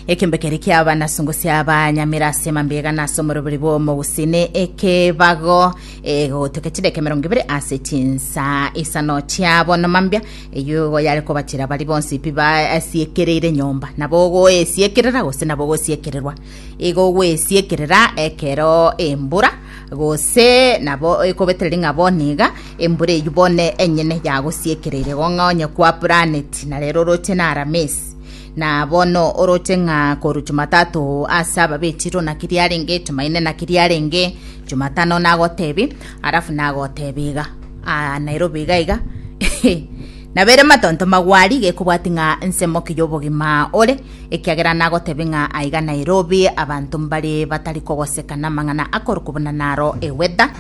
ekembe kere kiaba nasungo siaba nyamira ase mambega nase omorobori bw'omogusini ekebago egotoka chideke mirongo ibere ase chinsa isano chiabo nomambia eyo igo yare kobatira bari bonsi pi baasiekereire nyomba nabo ogoesiekerera gose nabo ogosiekererwa Igo gwesiekerera ekero embura, gose nabo ekobeterera ing'a bono iga, embura eyio bono enyene yagosiekereire igo ng'a onye kwaburaneti, na rero oroche na Aramisi. Na bono oroche ng'a korwa Jumatatu ase ababeti runa ki riarenge, Jumaine naki riarenge, Jumatano nagotebie, alafu nagotebie iga, Aa Nairobi iga iga nabere matonto magwari gekobwati ng'a ensemo ki y'obogima ore, ekiagera nagotebie ng'a aiga Nairobi abanto mbare batari kogoseka namang'ana akorokwa buna naro eweather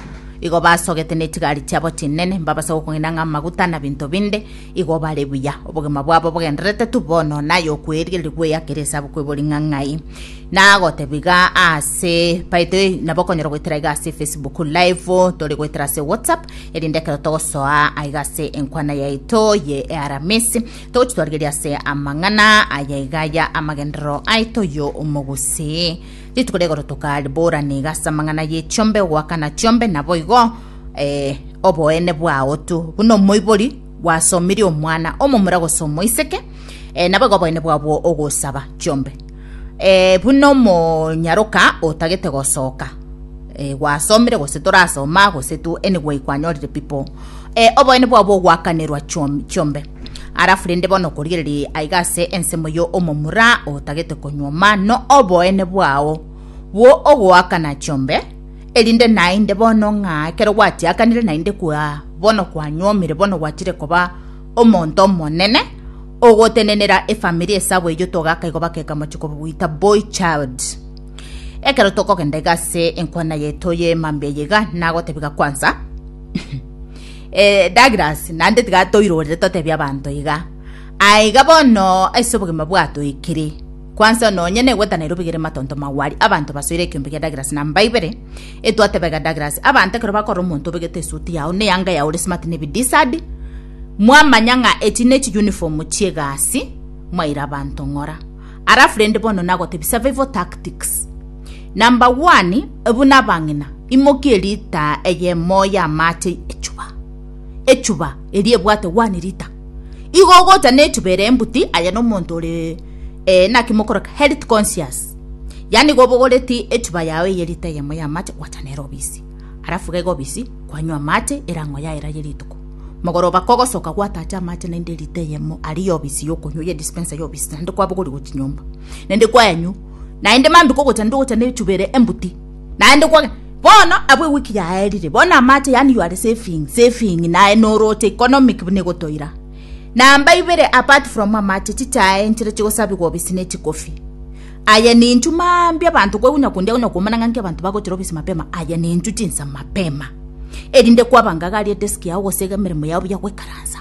igo basogete nechigari chiabo chinene mbabase gokong'ina ng'a amaguta na binto binde igo bare buya obogima bwabo bogenderete tu bono naye okweirigeria gweyakera esabu kwebori ng'a ng'ai nagotebiga ase by the way nabo okonyora goetera iga ase facebook live tore goetera ase whatsapp erinde ekero togosoa aiga ase enkwana yaito ye earamisi Toche twarigerie ase amang'ana aya iga aya amagenderero aito yo omogose. Rituko rigoro tokaribora niga ase amang'ana ye chiombe ogoakana chiombe nabo igo eh, oboene bwao tu buna omoibori gwasomirie omwana omomura gose omoiseke eh, nabo igo oboene bwabwo ogosaba chiombe. eh, buna omonyaroka otagete gosoka eh, gwasomire gose torasoma gose tu anyway kwanyorire people eh, oboene bwabo bogwakanerwa chiom- chiombe arafu rende bono korigereria aiga ase ensemo yo omomura otagete konywa mano oboene bwao bwo ogoakana chiombe erinde nainde bono ng'a ekero gwatiakanire nainde kwa bono kwanyomire bono gwachire koba omonto omonene Ogotenenera efamiri esabu eyio togaka igo bakeka mochiko bwita boy child. Ekero tokogenda iga ase enkwana yaito ye mambia eye iga nagotebiga kwansa eh, Douglas nande tiga toirorere totebia abanto iga aiga bono ase obogima bwato ikiri kwansa nonye negweta Nairobi gere matonto magwari abanto basoire ekiombe gia Douglas namba ibere etwatebega Douglas abanto ekero bakorora omonto obegete esuti yao ne yanga yao ore smart ne bidisadi Mwamanya ng'a echi ne chi uniform chi'egasi mwaira abanto ng'ora. Alafu rende bono nagotebie survival tactics. Number one, buna abang'ina, imokia elitaa eyemo y'amache echuba. Echuba eria ebwate one liter. Igo ogocha n'echuba ere embuti aye nomonto ore eh, naki mokoroka health conscious. Yaani igo obogoreti echuba yao eye lita eyemo y'amache gwacha nere obisi. Alafu gaiga obisi, kwanywa amache erang'o yaira ye rituko. Mogoroba kogosoka gwatacha amache naende erita eyemo aria y'obisi y'okonywa ye dispensa y'obisi, naende kwabogorigwa chinyomba, naende kwaenywa, naende mambia kogocha naende ogocha nechuba ere embuti, naende kwagenda. Bono abwo ewiki yaerire, bono amache, yaani you are saving, saving, naye noroche economic buna egotoira. Namba ibere, apart from amache, chichae nchiria chigosabigwa obisi ne chikofi. Aye ninchu mambia abanto kwegwenia konde agwenia komana ng'a nki abanto bagochora obisi mapema aye ninchu chinsa mapema erinde kwabangaga aria edesk yao gose iga emeremo yao buya goikaransa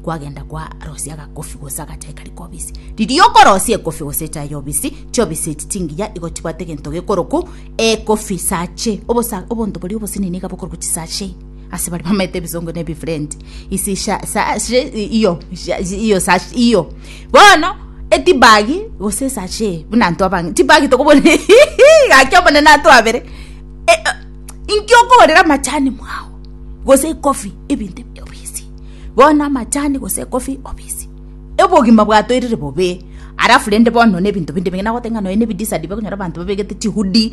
kwagenda kwarosia agacoffee gose agachai kari kobisi riria okorosia ecoffee gose echae yobisi chiobisi echi chingiya igo chibwate egento gekoroku ecoffee sachet obosa obonto boria obosini niga bokoroku chisachet Ase baria bamaete ebisongo na ebifurenti isi sha- sa- she- i- iyo sha- iyo sa- iyo bono etibagi gose esache buna anto abange tibagi tokobonire gaki omonene atwabere E- e- inki okoorera amachani mwao gose ekofi ebinto ebi obisi bono amachani gose ekofi obisi obogima bwatorire bobe alafu rende bono na ebinto binde bing'ina goteba ng'a nonya na ebidisa ribe okonyora abanto babegete chihudi.